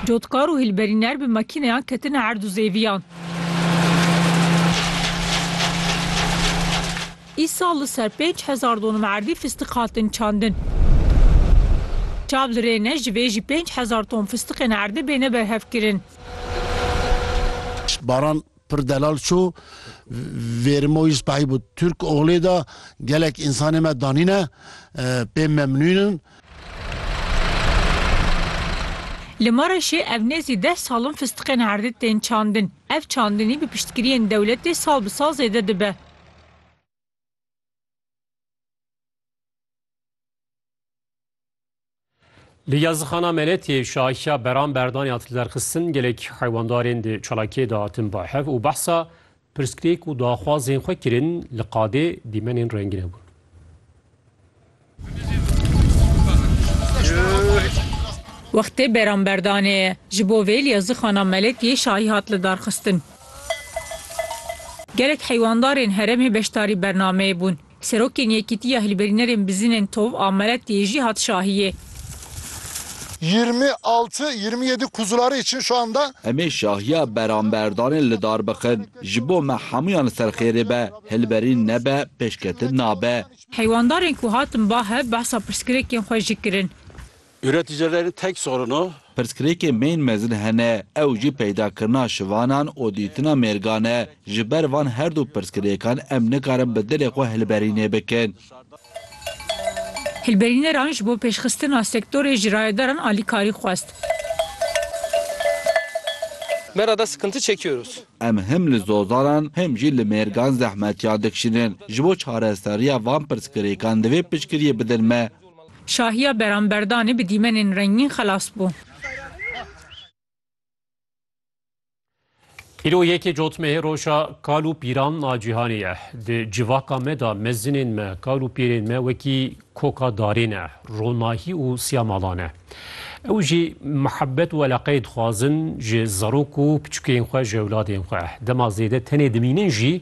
Cotkar û hilberîner bi makîneyan ketine erd û zêviyan. Îsal li ser pênc hezar donum erdî fistiq hatin çandin. Çav li rê ne ji vê jî pênc hezar ton fistiqên erdê bêne berhevkirin. Baran Pir Delal Ço, Vêrimo yî spehî bi Turk oglê de gelek însanê me danîne, pê memnûn in. Li Mereşê ev nêzî deh sal in fistiqên herdê tên çandin. Ev çandinî bi piştgiriyên dewletê sal bi sal zêde dibe. Li yazixana Meletiyê şahiya Beran Berdan ya tilderxistin gelek heywandarên di çalakiyê de hatin bahev û behsa pirsgirêk û daxwazên xwe kirin li qadê dîmenên rengîn hebûn. Wextê Beran Berdanê ye. Ji bo vê li yazixana Meletiyê şahî hat lidarxistin. Gelek heywandarên heremê beşdarî bernameyê bûn. Serokên Yekîtiya Hilberînerên Bizînên Tov a Meretiyê jî hat şahiyê. Yirmi altı, yirmi yedi kuzuları için şu anda. Em ê şahiya beramberdanê li dar bixin. Ji bo me hemûyan li ser xêrê be, hilberîn nebe, pêşketin nabe. Heywandarên ku hatin bahe behsa pirsgirêkên xwe jî kirin. Üreticilerin tek sorunu. Pirsgirêkên bên mezin hene, ew jî peydakirina şivanan û dîtina mêrgan e. Ji ber van her du pirsgirêkan em nikarin bi dilê xwe hilberînê bikin. Hilberîneran ji bo pêşxistina sektorê ji rayedaran alîkarî xwest. Me ra da sıkıntı çekiyoruz. Em him li zozanan him jî li mêrgan zehmetiyan dikişînin. Ji bo çareserîya van pirsgirêkan divê piştgiriyê bidin me. Şahiya Beramberdanê bi dîmenên rengîn xelas bû. Îro yekê cotmehê roja kal û pîran a cîhanê ye. Di civaka me de mezinên me, kal û pîrên me wekî koka darê ne, ronahî û siya mala ne. Ew jî mihebet û eleqeyê dixwazin ji zarok û piçûkên xwe ji ewladên xwe. Dema zêde tenê dimînin jî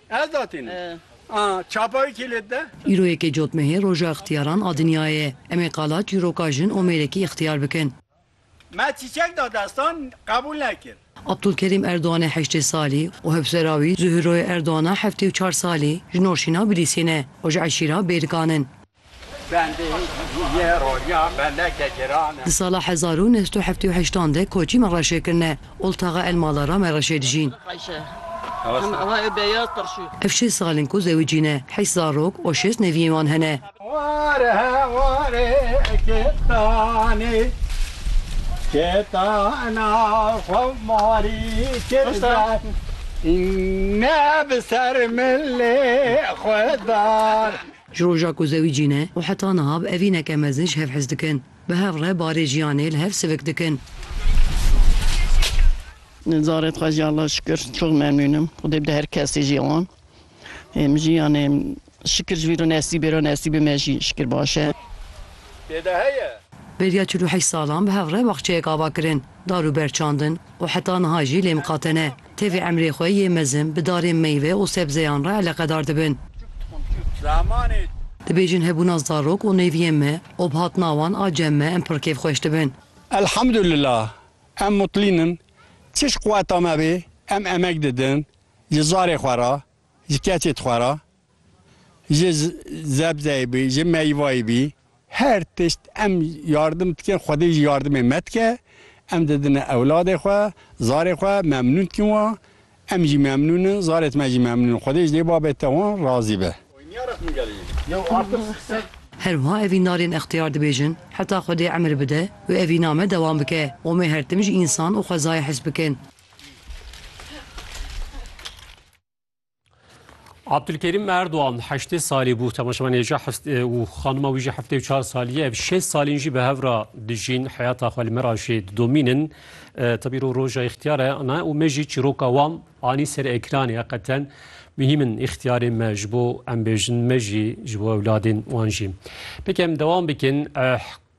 Ez datînim. A, çapa wî kî lê dide? Îro yekê cotmehê Roja Îxtiyaran a Dinyayê ye. Em ê qala çîroka jin û mêrekî îxtiyar bikin. Me çîçek da destan, qebûl nekir. Abdulkerîm Erdogan e heştê salî û hevsera wî Zuhûroye Erdogan a heftê û çar salî ji navşîna Bilîsê ne û ji eşîra Bêrgan in. Di sala hezar û neh sed û heftê û heşt an de koçî me reşê kirine. Oltaxa El Mala ra me reşê dijîn. Ev şêst sal in ku zewicî ne. Heşt zarok û şêst neviyên wan hene. Ji roja ku zewî cîn e û heta niha bi evîneke mezin ji hev hez dikin. Bi hev re barê jiyanê li hev sivik dikin. Zarê dixwe jî Allah şikir çok memnun im. Xwedê bide her kesê jî wan. Em jî yanê şikir ji vî re nesîbê re nesîbê me jî şikir baş e. Têde heye. Beriya çil û heşt salan bi hev re baxçeyek ava kirin, dar û ber çandin û heta niha jî lê miqate ne. Tevî emrê xwe yê mezin bi darên meyve û sebzeyan re eleqedar dibin. Dibêjin hebûna zarok û nêviyên me û bi hatina wan a cem me em pir kêfxweş dibin. Elhamdulillah em mutlîn in, çiş quweta me bê em emek didin ji zarê xwe re, ji keçê xwe re. Ji zebzeyê bî, ji meyvayê bî her tişt em yardim dikin. Xwedê jî yardimê me dike. Em didine ewladê xwe, zarê xwe memnûn dikin wan. Em jî memnûn in, zarê me jî memnûn in. Xwedê ji dê babê te wan razî be. Her wiha evîn narên extiyar dibêjin, heta Xwedê emir bide û evîna me dewam bike. Omê her tim ji însan û xwezayê hes bikin. Abdulkerîm Erdogan heştê salî bû temaşevanêja û xanima wî jî heftê û çar salî ye. Ev şêst salîn jî bi hev ra dijîn heyata xwe li me ra jî didomînin. Tebî rû roja îxtiyar e ne û me jî çîroka wan anî ser ekranê heqeten muhîm in îxtiyarên me ji bo em bêjin me jî ji bo ewladên wan jî. Pêkem dewam bikin.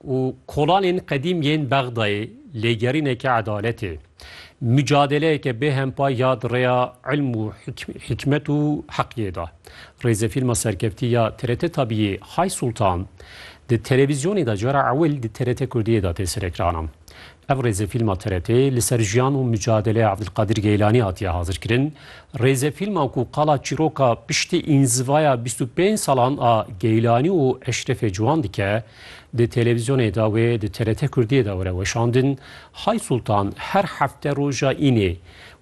û kolanên qedîm yên Bexdayê lêgerîneke edaletê, mucadeleyeke bê hempay ya di rêya ilm û hikmet û heqiyê de. Rêzefîlma serkeftî ya TRT Tabiyê Hay Sultan di televîzyonê de cara ewil di TRT Kurdiyê de tê serekiran. Ev rêzefîlma TRT'ê li ser jiyan û micadeleya Evdilqadir Geylanî hatiye hazirkirin. Rêzefîlma ku qala çîroka piştî înzivaya bîst û pênc salan a Geylanî û Eşrefê Ciwan dike, di televîzyonê de wê di TRT Kurdiyê de were weşandin. Hay Sultan her hefte roja înê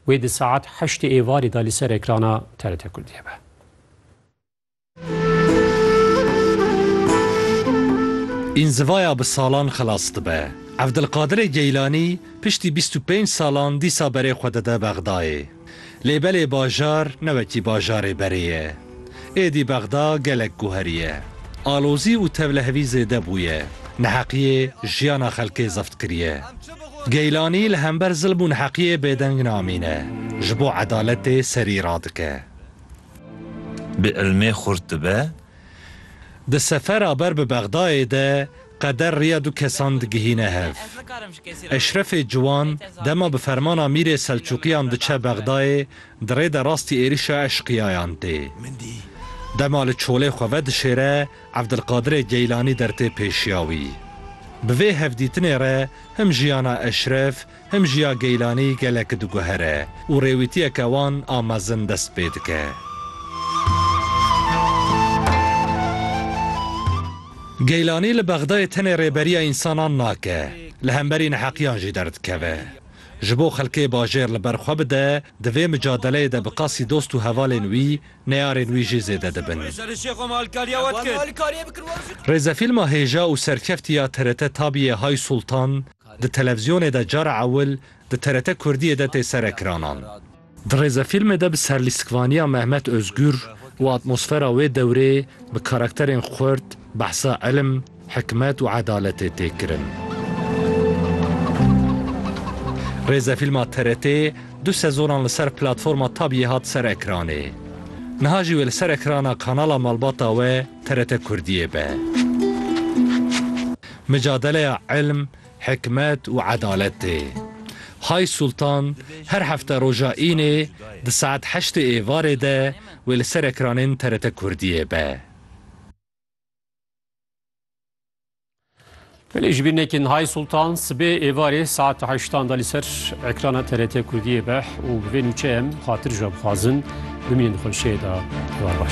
wê di saet heştê êvarê de li ser ekrana TRT Kurdiyê be. Înzivaya bi salan xilas dibe. Evdilqadirê Geylanî piştî bîst û pênc salan dîsa berê xwe dide Bexdayê. Lê belê bajar ne wekî bajarê berê ye. Êdî Bexda gelek guheriye. Alozî û tevlehevî zêde bûye. Neheqiyê jiyana xelkê zeft kiriye. Geylanî li hember zilm û neheqiyê bêdeng namîne. Ji bo edaletê serî radike. Bi ilmê xurt dibe. Di sefera ber bi Bexdayê de qeder riya du kesan digihîne hev. Eşrefê Ciwan dema bi fermana mîrê Selçûqiyan diçe Bexdayê di rê de rastî êrîşa eşqiyayan tê. Dema li çolê xwe vedişêre Evdilqadirê Geylanî dertê pêşiya wî. Bi vê hevdîtinê re him jiyana Eşref Him jî ya Geylanî gelek diguhere û rêwîtiyeke wan a mezin dest pê dike. Geylanî li Bexdayê tenê rêberiya însanan nake, li hemberî neheqiyan jî derdikeve. Ji bo xelkê bajêr li ber xwe bide, di vê micadeleyê de bi qasî dost û hevalên wî, neyarên wî jî zêde dibin. Rêzefîlma hêja û serkeftî ya TRT Tabiyê Hay Sultan, Di televziyonê de cara ewil di TRT Kurdiyê de tê serekiranan. Di rêzefîlmê de bi serlîstikvaniya Mehmet Ozgur û atmosfera wê dewrê bi karakterên xurt behsa ilim, hikmet û edaletê tê kirin. Rêzefîlma TRT'ê du sezonan li ser platforma Tabiyê hat serekiranê. Niha jî wê li serekirana kanala malbata we TRT Kurdiyê be. Micadeleya ilm, hikmet û edalet tê. Hay Sultan her hefte roja înê di saet heştê êvarê de wê li ser ekranên TRT Kurdiyê be. Belê ji bîr nekin Hay Sultan sibê êvarê saet heştan de li ser ekrana TRT Kurdiyê be û bi vê nûçeyem xatir ji we bixwazin bimînin xweşiyê de.